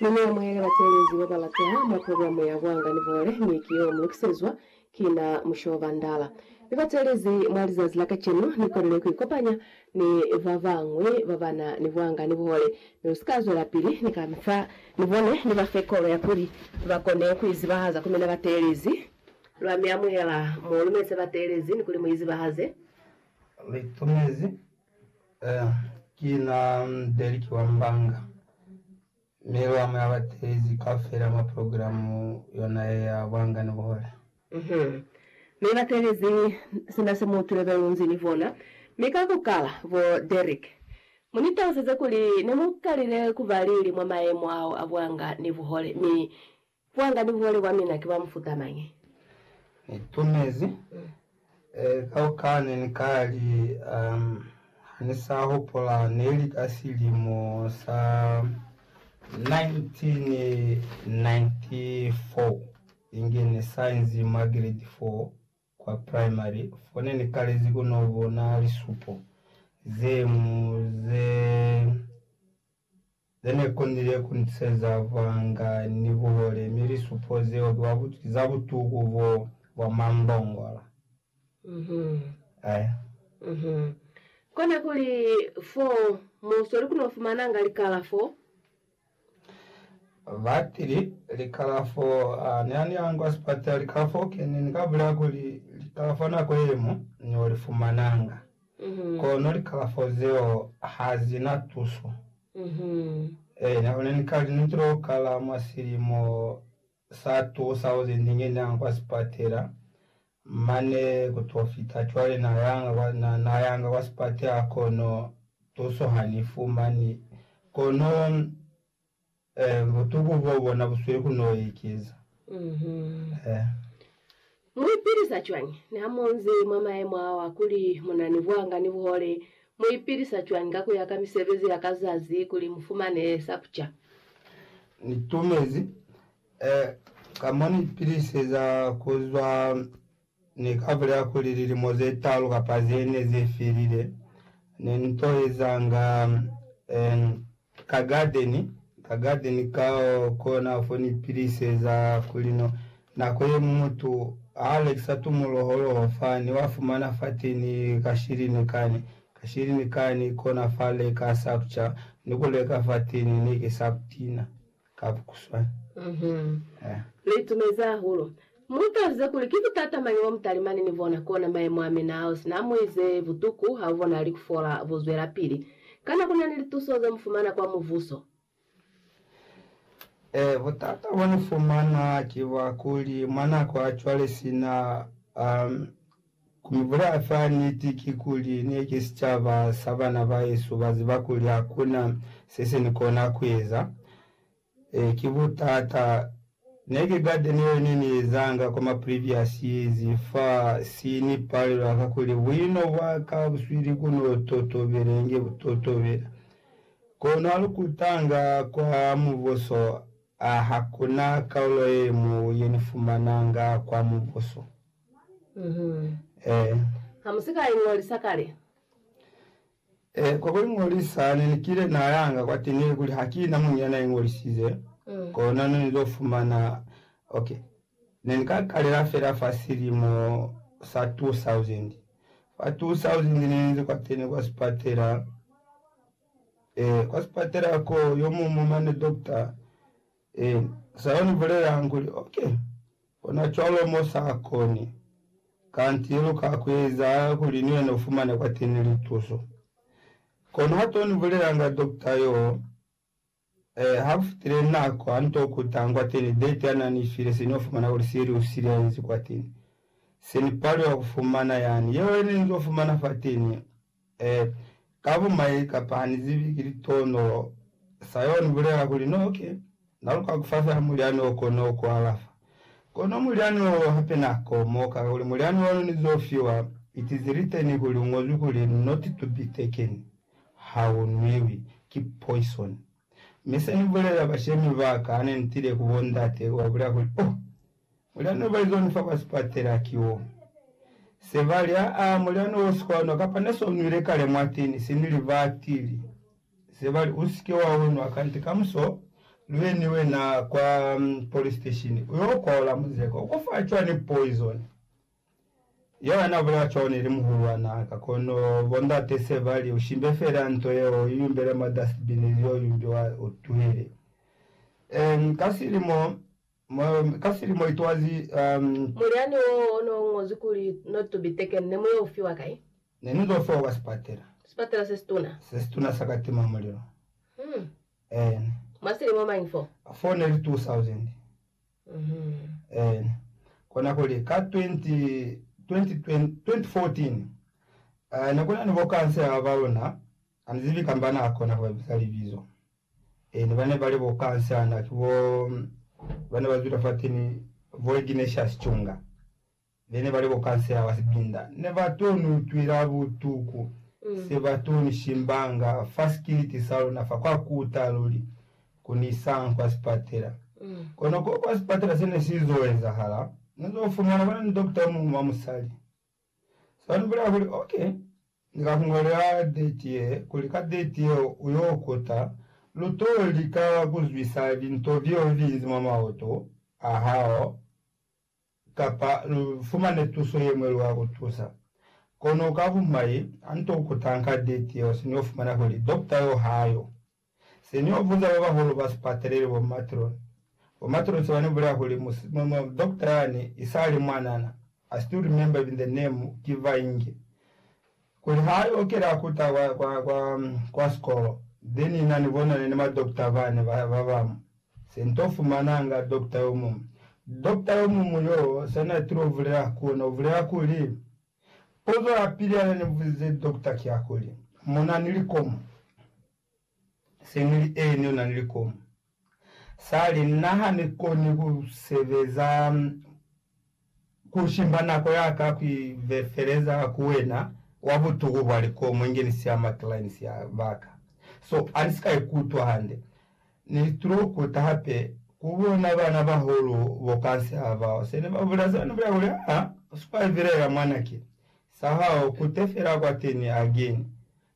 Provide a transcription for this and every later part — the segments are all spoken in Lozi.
Ni muyamuhele bateelezi babalata mwa programu ya Buanga ni Buhole, mi ki yo mulukisezwa ki na Mushobo Bandala. Mi bateelezi mwa lizazi la kacenu ni kolelwe ku ikopanya ni babañwi babana ni buanga ni buhole. Mi lu si ka zwelapili ni kamita ni bone, ni bafe kolo ya kuli bakone ku izibahaza ku mina bateelezi. Lwa mi amuhela mo lumeze bateelezi ni kuli mu izibahaze. Li tumezi Ki na Derrick wa Mbanga, mi lwa mu ya batelezi kaufela mwa programu yona ye ya Buhangani Buhole. Mi batelezi sina se mu tulebelunzi ni bona, mi ka ku kala, bo Derrick, mu ni taluseze kuli ne mu kalile ku ba lili mwa mayemo ao a Buhangani Buhole, mi Kwanga ni hole kwa mina ki wa mufuta mañi? Ni itumezi kaukaa ne ni ka li ha ni sa hupula ne li ka silimo sa 1994 inge ni sa inzi mwa grade 4 kwa primary fone ni kalezi ku no bona lisupo ze mu ze Ze ne konile ku ni seza vanga ni buhole, mi lisupo zeo ki za butuku bo bwa mambongola. Aya. Kona kuli fo mo sweli ku no fumananga likalafo? Batili, Likalafo, a ne a ni angwa sipatela, likalafo, ki, ni, ni ka bulela kuli likalafo nako ye mo ni yo li fumananga. Kono likalafo zeo ha zi na tuso. Eena, ku na ni kali ne tilo kala mwa silimo sa 2000 nge ni yanga kwa sipatela, mane ku to fita cwale na yanga kwa, na, na yanga kwa sipatela kono tuso ha ni fumani. Kono Ee, butuku bwa bona bu sweli ku n'o ekeza. Ee. Mu ipilisa cwañi niha mu nzi mwa mayemo ao a kuli mu na ni buanga ni buhole? Mu ipilisa cwañi ka ku ya ka misebezi ya ka zazi kuli mu fumane sa ku ca? Ni tumezi, ee, ka mo ni ipiliseza ku zwa Ni ka bulela kuli lilimo ze talu kapa ze ne ze felile, ne ni to ezanga en ka gadeni, ka gadeni ka kona fo ni piliseza kuli no. Nako ye ñwi mutu ha a lekisa tumuloholoho fa, ni wa fumana fateni ka shilini kani, ka shilini kani, kona fa leka sa ku ca, ni ku leka fateni ne ke sa ku tina. ka kuswana. Lu itumezi hahulu. Mu utaluze kuli, Ki butata mañi bo mutalimani ni bona? Kona mayemo a mina ao sina mu ize butuku, ha u bonahali ku fola. Bu zwelapili. Kana ku na ni lituso ze mu fumana kwa muvuso? Ee, butata bo ni fumana ki bwa kuli mwa nako ya cwale sina Ku ibulaya fa niti ki kuli, ne ki sicaba sa bana ba hesu ba ziba kuli ha ku na se se ni kona ku eza. Ee, ki butata. Ne ki garden yeo ne ni ezanga kwa ma previous years fa si ni palela ka kuli buino bwa ka buswili ku no totobela inge bu totobela. Kono ha lu kutanga kwa Mubuso, a ha ku na kaulo ye mu ye ni fumananga kwa Mubuso. Ee. Ha mu si ka iñolisa kale? Ee, kwa ku iñolisa ne ni kile na yanga kwateni ilikuli ha ki na muñwi ya na iñolisize, kona ne ni to fumana. Ok. Ne ni ka kalela fela fa silimo sa 2000. Fa 2000 ne ni ze kwateni kwa sipatela. Ee, kwa sipatela ko, yo muñwi mane, dokta, Ee, sa yo ni bulelanga kuli, ok, kona cwalo mo sa koni, kanti lu ka ku eza kuli ni wena u fumane kwateni lituso. Kono ha to ni bulelanga dokta yo, ee, ha ku fitile nako, ha ni to kutanga kwateni date ya na ni file, se ni yo fumana kuli siye li usile ya inzi kwateni. Se ni paliwa ku fumana yani. Yeo ye ne ni zo fumana fateni, Ee, ka bumai, kapa ha ni zibi, ki litono. Sa yeo ni bulela kuli no ke na luka ku fafela mulyani o kono ku alafa. Kono mulyani wo hape na komo kala kuli mulyani wanu ni zo fiwa itizi liteni kuli u ngozwi kuli not to be taken, ha u nwiwi, ki poison. Mi se ni bulela bashemi ba ka ha ne ni tile ku bo ndate, ku ba bulela kuli, Oh! Mulyani oba izwani fa ba sipatela ki wo se ba li, Aa, mulyani wo si kwa nwa, kapa ne so nwile kale mwa tini si ni li batili. Se ba li, U si ke wa u nwa, kanti kamuso lu ye ni wena kwa police station u yo kwaola muzeko. U ko fa cwani poison? Yeo na bulela cwalo ne li muhulwanaa ka, kono bo ndate se ba li, U shimbe fela nto yeo, u yumbele mwa dustbin, li yo yumbiwa, u tuhele. Ee, ka silimo. Ka silimo itwazi, um. Mulyani wo o no ñozwi kuli, No to be taken, ne mu yo fiwa kai? Ne ni zo fiwa kwa sipatela. Sipatela se situna? Se situna sa ka tima mulilo. Hmm. Eena. Mwa silimo mañi fo? Fo ne li 2000. Mm-hmm. Eena. Kona kuli, ka 20, 20, 20, 2014, uh, ne ku na ni bo kansela ba luna, Hanizibi kamba naakona kubabisa libizo. Eeni, bane bali bokansana ki bo bane bazwile fateni bo Ignatius Chunga. Bene bali bokansela ba sibinda nebatoni utwila butuku sebatoni shimbanga fa sikiliti saluna fa kwa kuta luli kuni isanga kwa sipatela. Kono ko kwa sipatela sene sizo ezahala, nezofumana bana ni dokita omuñwi wa musali. Sa ni bulela kuli, Ok, Ni ka ku ngolela deti ye, kuli ka deti yeo u yo kota, lu to lika ku zwisa linto vio linzi mwa maoto a hao, kapa lu fumane tuso ye mwe lu ka ku tusa. Kono u ka ku mai, ha ni to kutanga ka deti yeo, se ni yo fumana kuli dokta yo ha yo. Se ni yo buza ba bahulu ba sipatelele, bo matron, bo matrosi bani bulela kuli mu, mu, mu, doctor yani isali mwanana, I still remember even the name, ki Vainge, kuli ha a yo kela kuta kwa, kwa, kwa, kwa sikolo, then na ni bonane ni ma doctor bani ba, ba bamu. Se nto fumananga doctor yomumu. Doctor yomumu yoo, sa na tilo bulela ku ona, u bulela kuli, Puzo ya pili yane ni buzize dokota ki ya kuli, Mo na ni likomu? Se ni li, Eeni, u na ni likomu. Sa li, Na ha ni koni ku sebeza ku shimba nako ya ka ku ivefeleza ku wena wa butuku bwa likomu inge ni siya makilainisi ya ba ka. So, ha ni si ka ikutwa hande. Ni tulo kuta hape ku bona bana bahulu bo kasi ha bao se ne ba bula zeo ni bula kuli, Aa, sukwa vilela mwana ki sa hao, kute fela kwateni again.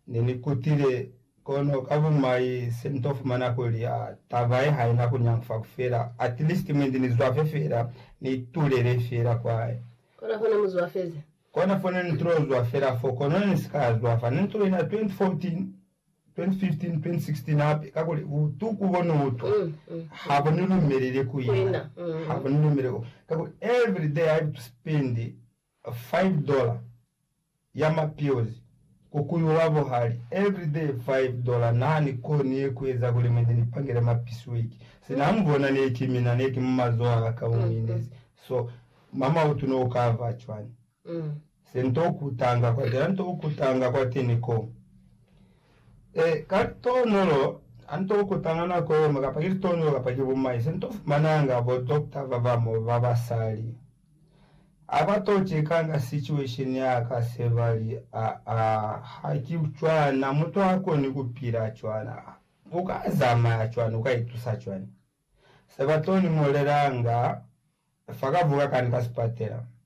Ne ni kutile, kono ka bumai se ni to fumana kuli, aa, taba ye haina ku nyangufa ku fela, at least mwendi ni zwafe fela, ni tulele fela kwaye. Kona fo ne mu zwafezi. Kona fo ne ni tulo zwa fela fo, kono ne ni si ka zwafa. Ne ni tulile na 2014. 2015-2016 hape, kakuli butuku bo no utwa ha bu ni lumeleli ku ina, ha bu ni lumeleli ku, kakuli every day I have to spend five dollar ya ma pills ku kuyu wa buhali, every day five dollar, na ni koni ku eza kuli mwendi ni pangele ma pisweki, sina ha mu bona ne ki mina, ne ki mu mazoho a ka, u minezi, so mama u tuno u ka fa cwani? Ee. Se nto ku tanga kwate, a nto ku tanga kwateni ko. E, ka litonolo, a nto ku tanga nako yemo, kapa ki litonolo kapa ki bumai, se nto fumananga bo dokta ba ba mo ba basali. A ba to chekanga situation ya ka, se ba li, A, a, ha ki cwana, mutu ha koni ku pila cwana. U ka zamaya cwani? U ka itusa cwani? Se ba to ni ñolelanga fa ka vuka kani ka sipatela.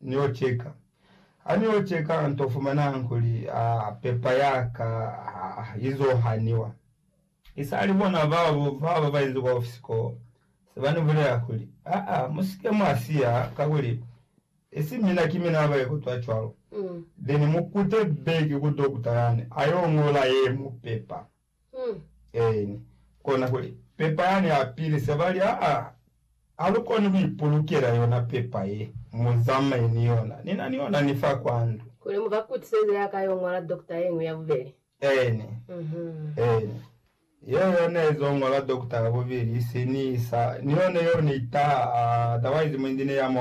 Nio ceka. Ha nio ceka, nto fumananga kuli, a, pepa ya ka, a, i zo haniwa. I sa li bona babo ba ba inzi kwa ofisi koo, se ba ni bulela kuli, A, a, mu si ke mwa siya, kakuli, isi mina ki mina ba ikutwa cwalo. Then mu kute back ku dokutara ni, a yo ñola ye mu pepa. Eeni, kona kuli, pepa yani ya pili, se bali, Aa, ha lu koni ku ipulukela yona pepa ye. Mu zamaye ni yona. Ni na ni yona ni fa kwa ndu. Kuli mu ka kutiseze ya ka yo ñola dokta yeñwi ya bubeli. Eeni. Eeni. Yeo yo ne zo ñola dokta ya bubeli, isi ni isa. Ni yone yo ni taa, otherwise muindi ne ya mo.